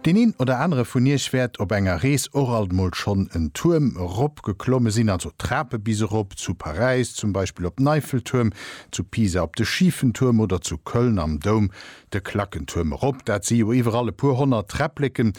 Deen een oder anere vun iech wäert op enger Rees och alt mol schonn en Tuerm erop geklomme sinn, also d'Trape bis erop, zu Paräis zum Beispill op den Eiffeltuerm, zu Pisa op de Schifen Tuerm oder zu Köln am Doum de Klackentuerm erop. Dat si jo iwwerall e puer honnert Träppleken.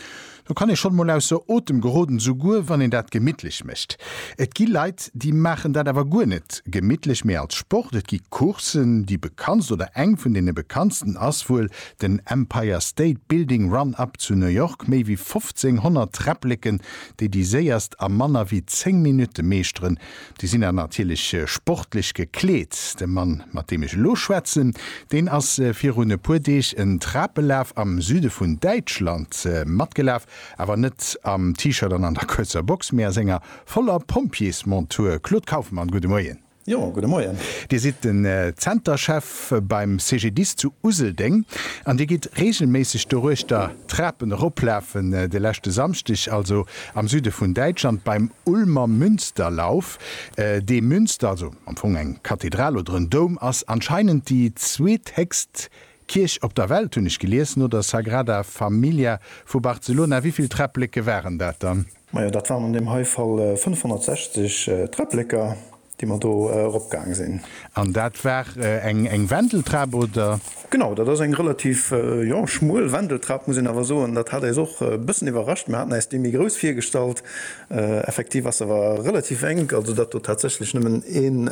Do kann ee schonn emol ausser Otem geroden, souguer wann een dat gemittlech mécht. Et gi Leit, déi maachen dat awer guer net gemittlech, mee als Sport. Et gi Courssen, déi bekanntst oder eng vun deene bekanntsten ass wuel den Empire State Building Run Up zu New York, méi wéi 1500 Träppleken, déi déi séierst a manner wéi 10 Minutte meeschteren. Déi sinn dann natierlech sportlech gekleet. De Mann, mat deem ech elo schwätzen, deen ass virun e puer Deeg en Trapelaf am Süde vun Däitschland matgelaf, awer net am T-Shirt an an der kuerzer Box, mee a senger voller Pompjeesmontur. Claude Kaufmann, gudde Moien. Jo, gudde Moien. Dir sidd den Zenterchef. Schëff beim CGDIS zu Useldeng an Dir gitt reegelméisseg doruechter d'Trapen eroplafen. De leschte Samschdeg also am Süde vun Däitschland beim Ulmer Münsterlauf. Dee Münster, also am Fong eng Kathedral oder en Doum, ass anscheinend déi zweethéchst Kierch op der Welt, hunn ech gelies, no der Sagrada Familia vu Barcelona. Wéi vill Träppleke waren dat dann? Majo, dat waren an deem hei Fall 560 Träppleke. déi mer do erop gaang sinn. An dat war eng Wendeltrap, oder? Genau, dat ass eng relativ, jo, schmuel Wendeltrap, muss een awer soen. Dat hat äis och e bëssen iwwerrascht. Mer haten äis déi méi grouss virgestallt. Effektiv ass se awer relativ enk, also dat do tatsächlech nëmmen een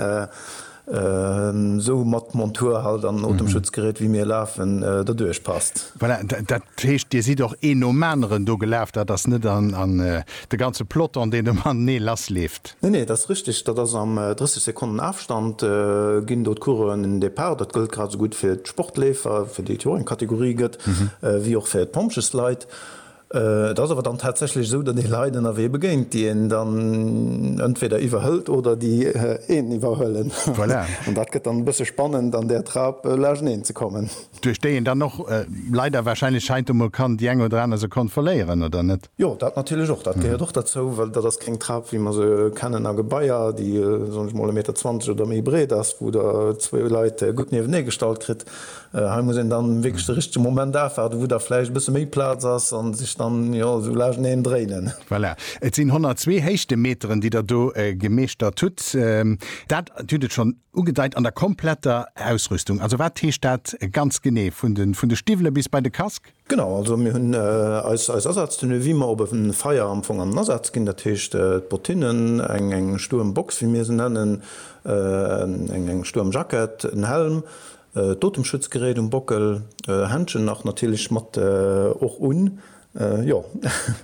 esou mat Montur halt an Otemschutzgerät wéi mir lafen, derduerch passt. Voilà, dat heescht, Dir sidd och een nom aneren do gelaf, dat ass net de ganze Peloton, deen do matenee lassleeft? Nee, nee, dat ass richteg. Dat ass am 30 Sekonnen Afstand ginn do d'Coureuren den Depart. Dat gëllt grad esou gutt fir d'Sportleefer, fir déi et jo och eng Kategorie gëtt, wéi och fir d'Pompjeesleit. Et ass awer dann tatsächlech esou, datt ee Leit ënnerwee begéint, déi een dann entweder iwwerhëlt oder déi een iwwerhuelen. Voilà. An dat gëtt dann e bësse spannend, an där Trap lageneen ze kommen. Duerch déi een dann och leider warscheinlech heiansdo mol kann déi eng oder aner Sekonn verléieren, oder net? Jo, dat natierlech och. Dat gehéiert och derzou, well dat ass keng Trap, wéi mer se kennen a Gebaier, déi, soen ech mol, e Meter zwanzeg oder méi breet ass, wou Der zwou Leit gutt niewene gestallt kritt. Hei muss een dann wierklech de richtege Moment afwaarden, wou da vläicht e bësse méi Plaz ass a sech dann, jo, esou laaschteneen dréinen. Voilà, et sinn 102 Héichtemeteren, déi Der do gemeeschtert hutt. Dat hutt et schonn ugedeit, an der kompletter Ausrüstung. Also wat heescht dat ganz genee, vun de Stiwwele bis bei de Casque? Genau, also mir hunn eis Asaaztenue wéi mer op e Feier am Fong am Asaz ginn. Dat heescht d'Bottinnen, eng Stuermbox wéi mir se nennen, eng Stuermjackett, en Helm, d'Otemschutzgerät um Bockel, Händschen nach natierlech mat och un, jo.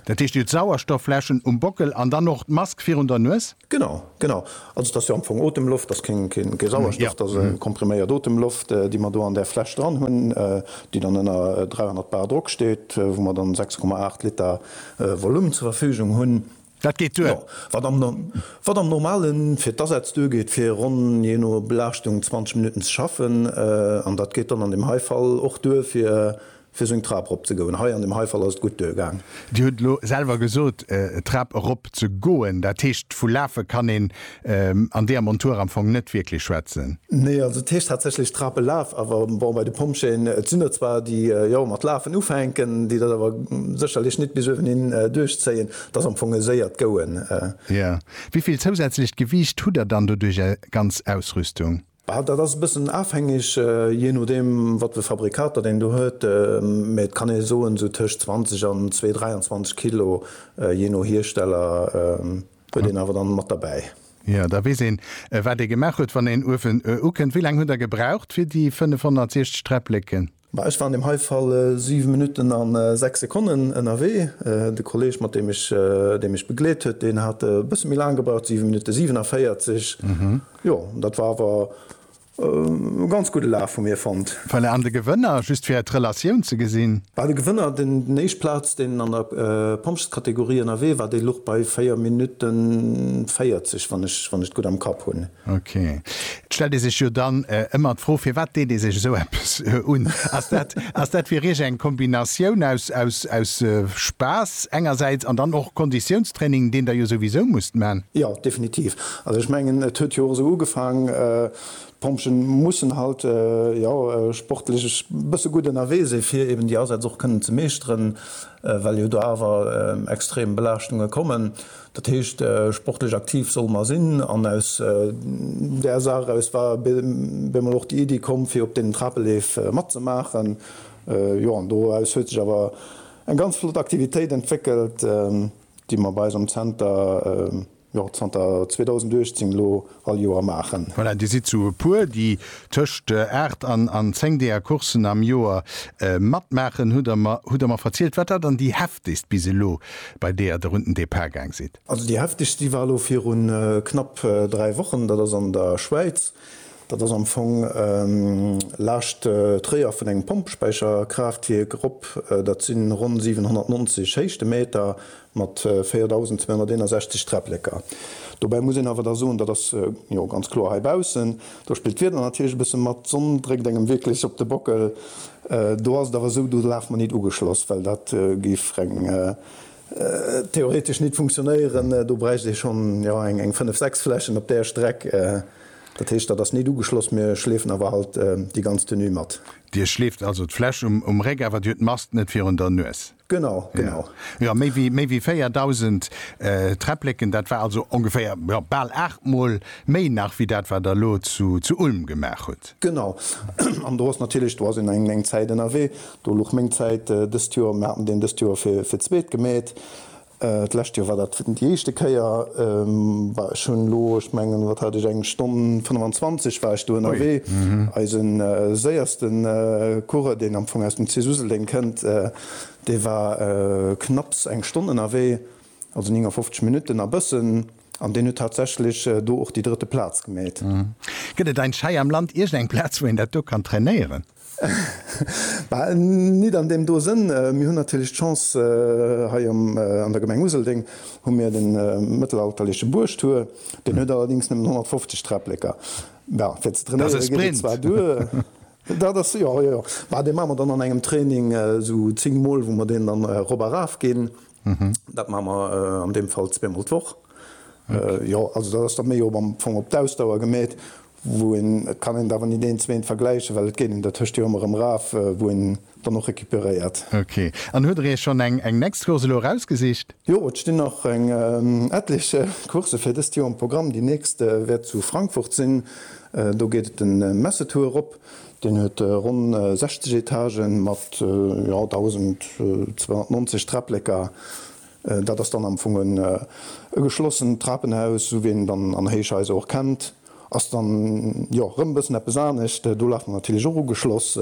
Dat heescht, dir hutt Sauerstoffläschen um Bockel an dann och d'Mask virun der Nues? Genau, genau. Also et ass jo am Fong Otemloft, et ass keng Sauerstoff, et ass kompriméiert Otemloft, déi mer do an där Fläsch dran hunn, déi dann ënner 300 bar Drock steet, wou mer dann 6,8 Liter Volume zur Verfügung hunn. Dat geet duer. Wat am Normale fir d'Asätz duergeet, fir ronn, jee no Belaaschtung, 20 Minutten ze schaffen. An dat geet dann an deem hei Fall och duer, fir Fir seng Trap erop ze goen. Hei an dem hei Fall ass et gutt duer gaang. Dir hutt elo selwer gesot, d'Trap erop ze goen, dat heescht vu lafe kann een an deeër Montur am Fong net wierklech schwätzen? Nee, also et heescht tatsächlech Trap elaf, awer bon, bei de Pompjeeën, et sinn der zwar déi jo mat lafen ufänken, déi dat awer sécherlech nit bis uewenhin duerchzéien, et ass am Fong e séiert Goen. Jo. Wéi vill zousätzlecht Gewiicht hutt der dann doduerch, är ganz Ausrüstung? Bah, dat ass e bëssen afhängeg, jee nodeem, wat fir Fabrikater deen do huet. Mä et kann ee soen, esou tëscht 20 an zwee, 23 Kilo, jee no Hiersteller, huet een awer dann mat derbäi. Jo, da weess een, wat ee gemaach huet, wann een Uefen ukënnt. Wéi laang hutt Der gebraucht fir déi 560 Träppleken? Ma ech war an deem hei Fall 7 Minutten a 6 Sekonnen ënnerwee. De Kolleg, mat deem ech, dee mech begleet huet, deen hat e bësse méi laang gebraucht, 7 Minutte 47. Jo, dat war awer e ganz gudde Laf vu mir fonnt. Voilà, an de Gewënner, just fir d' Relatioun ze gesinn? Bah, de Gewënner, deen éischt Plaz, deen an der Pompjeeskategorie ënnerwee war, dee luch bei 4 Minutte 40, wann ech et gutt am Kapp hunn. Ok. Et stellt ee sech jo dann ëmmer d'Fro, firwat deet ee sech esou eppes un? Ass dat, ass dat fir Iech eng Kombinatioun aus, aus, aus Spaass engersäits an dann och Konditiounstraining, deen Der jo souwisou musst man? Jo, definitiv. Also ech mengen, et huet jo och esou ugefaang, d'Pompjeeën mussen halt, jo, sportlech e bësse gutt ënnerwee si fir eben déi Asätz och kënnen ze meeschteren, well jo do awer extrem Belaaschtunge kommen. Dat heescht, sportlech aktiv solle mer sinn. An aus där Saach eraus war bie mol och déi Iddi komm, fir op deenen Trapeleef matzemaachen. Jo, an doraus huet sech awer eng ganz flott Aktivitéit entwéckelt, déi mer bei eis am Zenter, jo, zanter 2018 elo all Joer maachen. Voilà, dir sidd sou e puer, déi tëscht 8 an an 10 deeër Coursen am Joer matmaachen, hutt der mer, hutt der mer verzielt, wat dat dann déi heftegst bis elo, bei deeër der un den Depart gaang sidd? Also déi heftegst, déi war elo viru knapp 3 Wochen, dat ass an der Schwäiz, dat ass am Fong laascht Tréier vun engem Pompespäicherkraaftwierk erop, dat sinn ronn 790 Héichtemeter, mat 4.261 Träpplëcker. Dobäi muss een awer da soen, dat ass jo ganz kloer heibaussen, do spillt d'Wieder natierlech e bësse mat, d'Sonn dréckt engem wierklech op de Bockel. Do ass et awer esou, do laf mer nit ugeschloss, well dat géif reng theoretesch nit funktionéieren, do bräicht ee schonn jo eng fënnef, sechs Flächen op där Streck. Dat heescht, dat ass nit ugeschloss, mir schleefen awer halt déi ganz Tenue mat. Dir schleeft also d'Fläch um Réck, awer dir hutt d'Mast net virun der Nues? Genau, genau. Jo, méi wéi 4.000 Träppleken, dat war also ongeféier, jo, bal aachtmol méi nach wéi dat, wat Der elo zu Ulm gemaach hutt. Genau. An do ass natierlech, do ass een eng läng Zäit ënnerwee. Do luch meng Zäit dëst Joer, mir haten deen dëst Joer fir d'zweet gemeet. D'lescht Joer war dat déi éischte Kéier. War ech hunn elo, ech mengen, wat hat ech, eng Stonn 25 war ech do ënnerwee. Eise séierste Coureur, deen am Fong aus dem CIS Useldeng kënnt, dee war knapps eng Stonn ënnerwee, also 59 Minutten a bëssen, an deen huet tatsächlech do och déi drëtte Plaz gemeet. Gëtt et ein Schei am Land iergendeng Plaz, wou een dat do kann trainéieren? Bah, nit an deem do Sënn. Mir hunn natierlech d'Chance, hei an der Gemeng Useldeng hu mir de mëttelalterleche Buergtur. Deen huet allerdéngs nëmmen 150 Träppleken. Bah, fir ze trainéiere geet et zwar duer. Dat ass e Sprint. Dat ass, jo, jo, jo. Bah, dee maache mer dann an engem Training esou zéng Mol, wou mer deen dann erop a raf ginn. Dat maache mer an deem Fall zweemol d'Woch. Jo, also dat ass da méi am Fong op d'Ausdauer gemeet. wou een, et kann een et awer nit eent zu eent vergläichen, well et geet een dertëscht jo ëmmer erëm raf, wou een dann och recuperéiert. Ok. An huet der iech schonn eng eng next Course elo erausgesicht? Jo, et stinn nach eng etlech Coursë fir dëst Joer um Programm. Déi nächst wäert zu Frankfurt sinn. Do geet et den Messe-Tour erop. Deen huet ronn 60 Etagen mat, jo, 1.290 Träpleker. Dat ass dann am Fong e geschlossent Trapenhaus, esou wéi een et dann an Héichhaiser och kennt. Ass dann jo rëm e bëssen eppes anescht. Do laf mer natierlech och ugeschloss.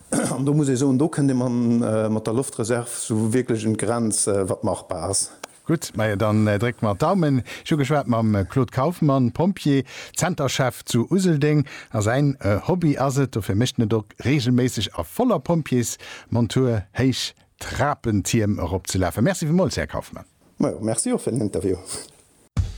An do muss ee soen, do kënnt ee mat der Loftreserv esou wierklech un d'Grenz, wat machbar ass. Gutt, majo dann drécke mer d'Daumen. Ech hu geschwat mam Claude Kaufmann, Pompjee, Zenterchef zu Useldeng. A säin Hobby ass et, dofir mécht en et och reegelméisseg a voller Pompjeesmontur héich Trapentierm eropzelafen. Merci villmools, Här Kaufmann. Majo, merci och fir den Interview.